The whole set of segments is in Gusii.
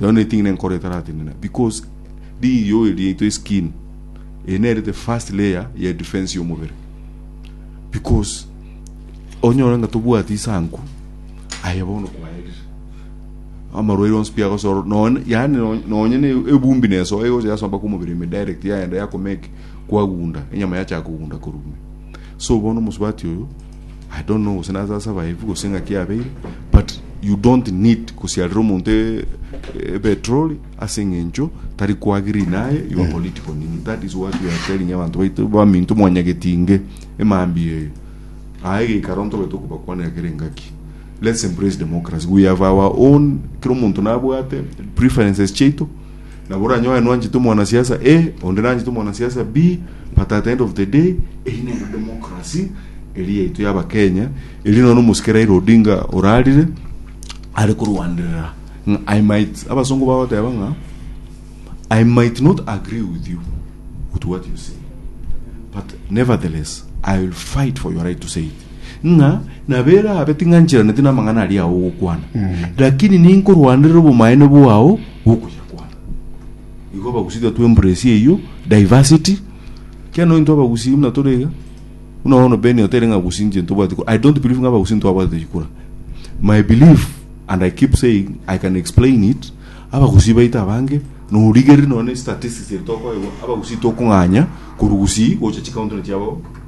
Nao neting'ina enkoro etaratenena because riiyoi riaito eskin eye nere the first layer ya defense y'omobere because onyore ng'a tobwati isanku aye bono kwaerire amarwaire onsi pi agosoro nonye yaani no- nonye ne ebumbi nesoa egocha yasomba kw'omobere ime direct yaenda yakomake kwagunda enyama yachaka kogunda korwa ime so bono omosubati oyo I don't know gose naase ase abaebi gose ng'aki yabeire but you don't need kosiarera omonto e- e- epetroli ase eng'encho tari koagree naye your political nini that is what we are telling abanto baito baminto mwanyagetinge emambia eyo aye geikaro ntobete okobakwanera kera engaki let's embrace democracy we have our own kera omonto nabwate preferences chiaito Nabo oranyoe nwanchete omwanasiasa A, onde nanchete omwanasiasa B, but at the end of the day, eri nere democracy eri yaito ya Abakenya, eri nono omosike Raila Odinga orarire are korwanderera ng'a I might, abasongo bagoteba ng'a I might not agree with you with what you say, but nevertheless I will fight for your right to say it. ng'a nabo erabe ting'ancheraneti namang'ana aria ao ogokwana lakini ninkorwanerera obomaene bwao bw'okoyakwana igo abagusi tiga to embrace eyio diversity kiagera nonya intwe abagusi buna tore iga buna bono ben otere ng'a abagusi inche ntobwati kura i don't believe ng'a abagusi ntwabwatete chikura my belief and i keep saying i can explain it abagusi baito abange norigereria nonya ne statistics eri tokoegwa abagusi tokong'anya korwa gusii gocha chicountry chiabo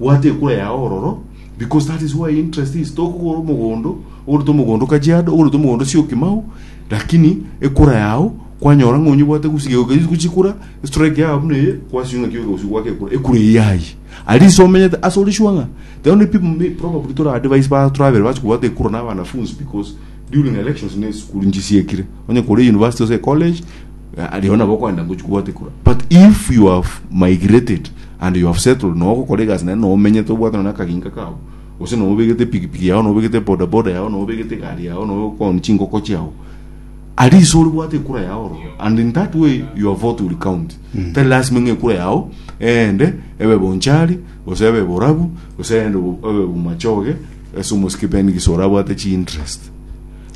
Bwata ekura yao ororo, because that is where interest is. Tokogora omogondo, ogoreta omogondo o Kajiado, ogoreta omogondo o Syokimau, lakini ekura yao kwanyora ng'a onyebwate gusige oke- guchikura, strike yao buna eye, kwasio ng'a kiyoka gusio gwaka ekura, ekura eye yayi. At least omenyete ase ore sure ng'a the only people may- probably tore advise ba tore babere bachia kobwata ekura na abanafunzi because during elections na esukuru nchisiekire. Onye kore university gose ecollege, eh, aria bono nabo okogenda gochia kobwata ekura. But if you have migrated, And you have settled na ogokora egasi naende na omenyete obwate nonye akaginka kao gose na obegete pikipiki yao na obegete bodaboda yao na obegete egari yao na okooni chingoko chiao ari iso ore bwate ekura yao oro and in that way your vote will count tari lasima ng'a ekura yao eende ebe bonchari gose ebe borabu gose eende bo- ebe bomachoge ase omosike ben gise orabwate chi interest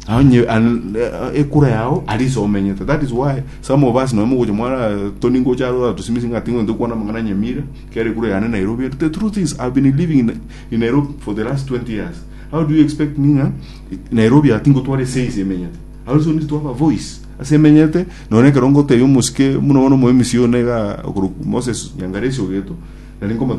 Onye an- eh, ekura yao ari ase omenyete that is why some of us nonya mogocha mwana toni ngocha aro atosimisi ng'a ting'o into kwana amang'ana nyamira kera ekura yane nairobi the truth is i've been living in, in nairobi for the last 20 years how do you expect me ng'a nairobi ati ngotwara ese ase emenyete i also need to have a voice ase emenyete nonye ekero ngotebia omosike buna bono omoemisi one iga okorwa moses nyangaresi ogeto nari nkomo